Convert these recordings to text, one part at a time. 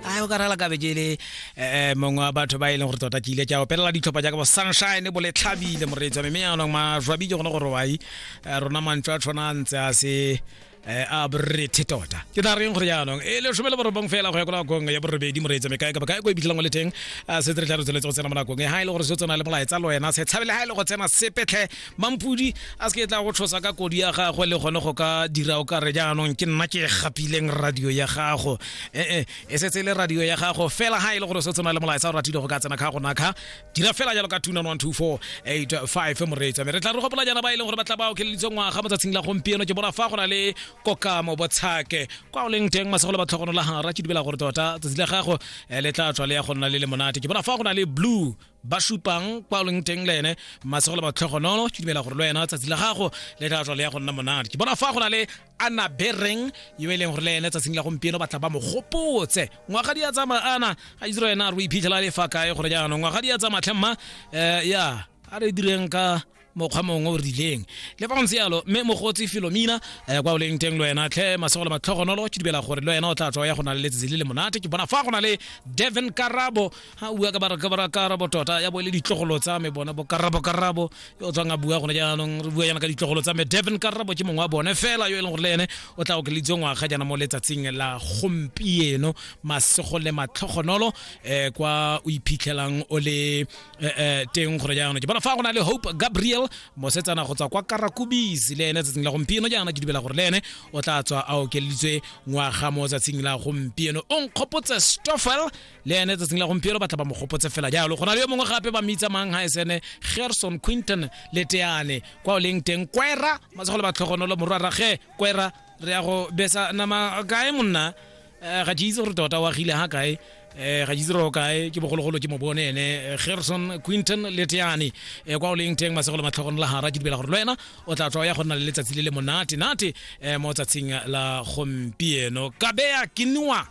a o ka rala kabeje le eh, mongwe wa batho ba e leng gore tota ke ile ke a opelela ditlhopha jaaka bo sunshine bo letlhabile moreetsa mme yanong majwabi ke gone gore wai eh, rona mantswe a tshwana a ntse a se eh, a borethe tota ke tla reng gore jaanong e le shome le borobong fela go ya ko nakong ya borobedi moreetsa mme kae kapa kae ko e bitlhelang o le teng a se tle tla re tsweletse go tsena mo nakong e ha e le gore se o tsena le molaetsa le wena se tshabele ha e le go tsena sepetlhe mampudi a se ke tla go tshosa ka kodi ya gagwe le gone go ka dira o ka re jaanong ke nna ke gapileng radio ya gago ee e setse e le radio ya gago fela ga e le gore se tsena le molaetsa o ratile go ka tsena kga go nakga dira fela jalo ka tuna 1248 moreetsa mme re tla re gopola jana ba e leng gore ba tla ba okeleditse ngwaga mo tsatsing la gompieno ke bona fa go na le kokamo botshake kwa o leng teng masego le ba tlhogonola ga ra ke dibela gore tota tsatsi la gago eh, le tla tswa le ya go nna le le monate ke bona fa go na le blue ba supang kwa o leng teng le ene masego le matlhogonono ke dumela gore le wena tsatsi la gago le tla tswa le ya go nna monate ke bona fa go na le ana bereng yo e leng gore le ene tsatsing la gompieno batla ba mo gopotse ngwaga di a tsamaya ana a itse wena re o iphitlhela le fa kae gore jaanong ngwaga di a tsamaya tlhemma um ya a re direng ka mokgwa mongwe o rileng le fa go ntse yalo mme mogotsi filomina um kwa o leng teng le wena tlhe masego le matlhogonolo ke dibela gore le wena o tla tswa ya go na le letsatsi le le monate ke bona fa go na le devon karabo a bua ka bara karabo tota ya bo e le ditlogolo tsa me bone bo karabo karabo yo o tswang a bua gone jaanong re bua yana ka ditlogolo tsa me devon karabo ke mongwe wa bone fela yo e leng gore le ene o tla okeleditswe ngwaga jaana mo letsatsing la gompieno masego le matlhogonolo um kwa o iphitlhelang o le eh, eh, teng gore jaanong ke bona fa go na le hope gabriel mosetsana go tswa kwa karakubis le ene tsatsing la gompieno jaana ke dubela gore le ene o tla tswa a okeleditswe ngwaga mo tsatsing la gompieno o nkgopotse stoffel le ene tsatsing la gompieno batla ba mo gopotse fela jalo go na le yo mongwe gape ba mmitsamang ga esene gerson quinton le teane kwa o leng teng kwera masego le batlhogonolo morwarage kwera re ya go besa nama kae monna Eh, ga ke itse gore tota o agile ga kae eh ga jiziro kae ke bogologolo ke mo bone ene eh, Gerson Quinton Leteane eh kwa o leng teng masegolo matlhogong la hara ke dibela gore le wena o tla tswa ya go nna le letsatsi le le monate nate eh mo tsatsing la gompieno kabeya kinwa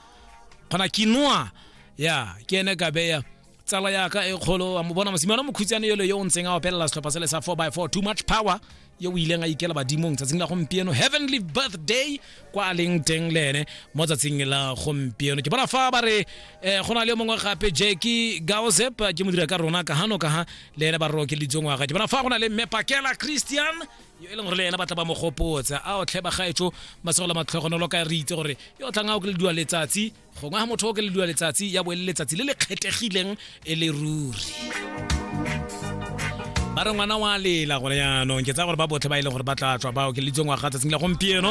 khona kinwa ya ke ene kabeya tsala yaka e kgolo wa mo bona mosimane mokhutsane yole yo o ntseng a opelela setlhopha sele sa 4x4 too much power yo o ileng a ikela badimong tsatsing la gompieno heavenly birthday kwa a leng teng le ene mo tsatsing la gompieno ke bona fa ba re um go na le mongwe gape jacki gaosep ke modira ka rona ka gano ka ga le ene ba roke litsongwaga ke bona fa go na le mmepakela christian yo e leng gore le ena ba tla ba mo gopotsa a o tlhe bagaetso masego la matlhogonolo ka re itse gore yo o tlang a o ke le dua letsatsi gongwe ga motho o ke le dua letsatsi ya bo e le letsatsi le le kgethegileng e le ruri ba re ngwana wa lela gore yaanong ke tsaya gore ba botlhe ba e leng gore ba tla tswa bao ke le itseng wa ga tsatsing la gompieno